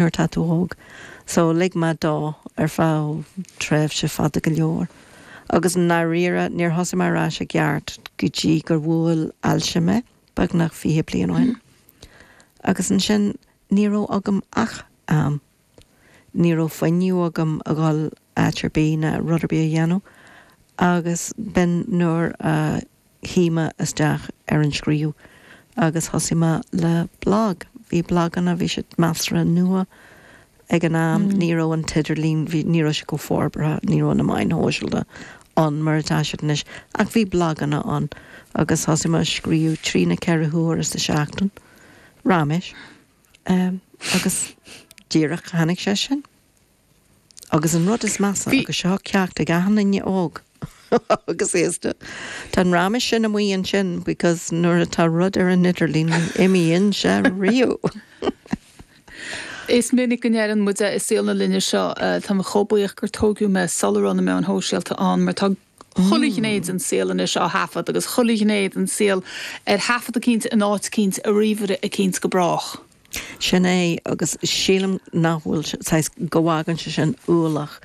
nuair atá tú óg so lig mé dó ar feadh tréimhse fada go leor agus i ndáiríre níor thosaigh mé ar ais i gceart go dtí gur bhuail ailse mé beagnach fiche bliain ó shin agus ansin ní raibh agam ach am, ní raibh fuinneamh agam a ghabháil áit ar bith ná rud ar bith a dhéanamh agus b'in nuair a. luigh mé isteach ar an scríobh agus thosaigh mé le blag. Bhí blaganna, bhí siad measartha nua ag an am, ní raibh an t-idirlíon, bhí, ní raibh sé chomh forbartha, ní raibh na meáin shóisialta ann mar atá siad anois, ach bhí blaganna ann agus thosaigh mé a scríobh trí nó ceithre huaire sa tseachtain, raiméis, agus díreach tháinig sé sin. Agus an rud is measa, agus seo ceacht ag achan duine óg agus aosta, tá an raiméis sin amuigh ansin because nuair atá rud ar an idirlíon, ní imíonn sé riamh. Is minic go ndeireann muid é i saol na linne seo, tá mé chomh buíoch gur tóigeadh mé sular raibh na meáin shóisialta ann mar tá chuile ghné den saol anois á thaifeadadh agus chuile ghné den saol ar thaifead eicínt in áit eicínt i ríomhaire eicínt go brách. Sin é agus sílim nach bhfuil sé, saghas, go bhfágann sé sin ualach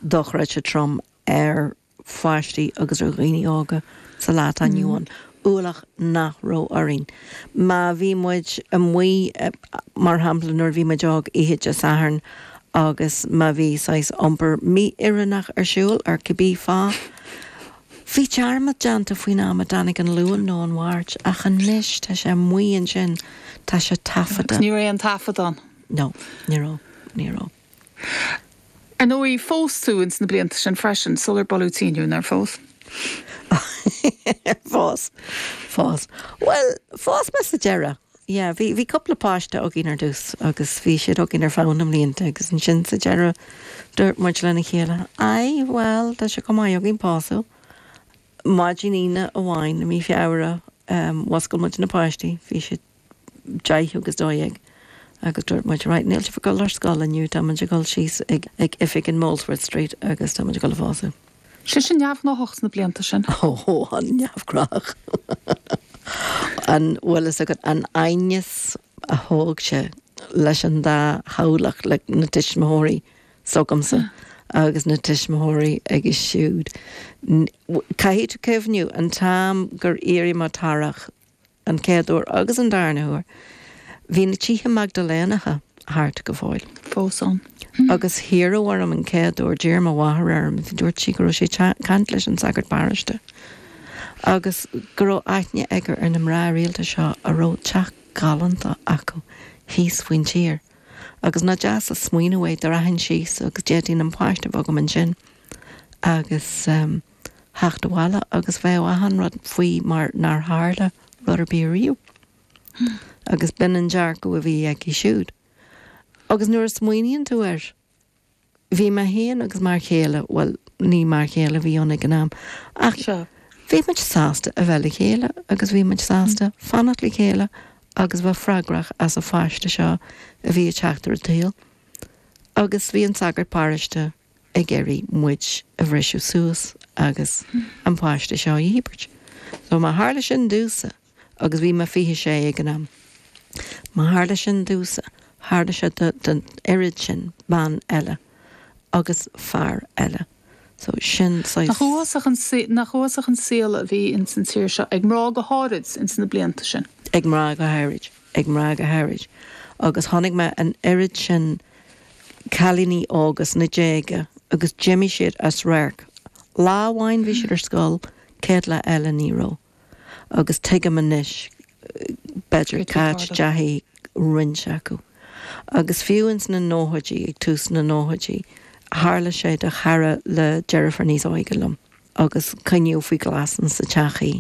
dochreidte trom ar pháistí agus ar dhaoine óga sa lá atá inniu ann. ualach nach raibh orainn. Má bhí muid amuigh, mar shampla, nuair a bhí muid óg, oíche Dé Sathairn agus má bhí saghas iompar mí-oiriúnach ar siúl ar cibé fáth, bhíodh dearmad déanta faoin am a dtáinig an Luan nó an Mháirt ach anois tá sé amuigh ansin, tá sé taifeadta. Agus ní raibh aon taifead ann. No, ní raibh, ní raibh. Ar ndóigh, phós tú ins na blianta sin freisin, sular buladh tinn thú, nár phós? Phós, phós. Bhuel, phós mé sa deireadh. Yeah, bhí, bhí cúpla páiste againn ar dtús agus bhí siad againn ar feadh na mblianta agus ansin sa deireadh dúirt muid lena chéile, aye, bhuel, tá sé chomh maith againn pósadh. Maidin Aoine amháin i mí Feabhra, eh, mhuscail muid na páistí, bhí siad. 10 agus 12 agus dúirt muid 'right, níl sibh ag dul ar scoil inniu, táimid ag dul síos ag oifig in Molesworth Street agus táimid ag dul a phósadh. Bhí sé sin neamhghnách sna blianta sin. Ó, an-neamhghnách. An bhfuil a fhios agat an t-aighneas a thóg sé leis an dá theaghlach, le na tuismitheoirí s'agamsa agus na tuismitheoirí aige siúd. Caithfidh tú cuimhniú an t-am gur iarraidh mo atharach, An chéad uair agus an darna huair, bhí na tithe Maigdiléanacha thart go fóill, fós ann. Agus iarradh orm an chéad uair, d'iarr mo mháthair orm, dúirt sí go raibh sí ag caint leis an sagart paróiste agus go raibh aithne aige ar na mná rialta seo a raibh teach galánta acu thíos faoin tír. Agus nach deas an smaoineamh é dá rachainn síos agus d'fhéadfainn an páiste a bheith agam ansin agus. theacht abhaile agus bheadh achan rud faoi mar nár tharla rud ar bith riamh. Agus b'in an dearcadh a bhí aici siúd. Agus nuair a smaoiníonn tú air, bhí mé féin agus m'fhear chéile, bhuel, ní m'fhear chéile a bhí ann ag an am, ach bhí muid sásta a bheith le chéile agus bhí muid sásta fanacht le chéile agus bheith freagrach as an pháiste seo a bhí ag teacht ar an tsaol. Agus bhí an sagart paróiste ag iarraidh muid a bhriseadh suas agus an páiste seo a dhíbirt. So má tharla sin domhsa, agus bhí mé 26 ag an am, má tharla sin domhsa, tharla sé don oiread sin bean eile agus fear eile. So sin saghas. Nach uafásach an saol a bhí ins an tír seo, ag mná go háirid, ins na blianta sin. Ag mná go háirid. ag mná go háirid, agus chonaic mé an oiread sin cailíní óga sna déaga agus d'imigh siad as radharc. Lá amháin bhí siad ar scoil, céad lá eile ní raibh. Agus tuigim anois, b'fhéidir, cá dteachaidh, roinnt acu. Agus fiú ins na nóchaidí, ag tús na nóchaidí, tharla sé do chara le deirfiúr níos óige liom agus coinníodh faoi ghlas insan teach í,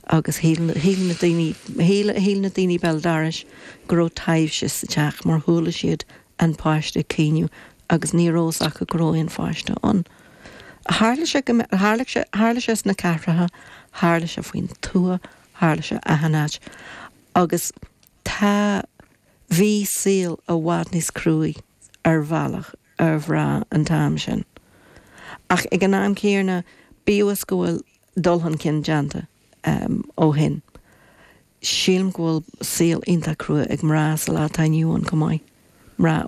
agus shíl na daoine, shíl na daoine béal dorais go raibh taibhse sa teach mar chuala siad an páiste ag caoineadh agus ní raibh a fhios acu go raibh aon pháiste ann. Tharla sé go mbeadh, tharla sé, tharla sé sna cathracha, tharla sé faoin tuath, tharla sé achan áit agus tá, bhí saol i bhfad níos cruaidh ar bhealach ar mhná an t-am sin ach ag an am céanna bíodh is go bhfuil, dul chun cinn déanta ó shin. Sílim go bhfuil saol iontach crua ag mná sa lá atá inniu ann chomh maith. Mná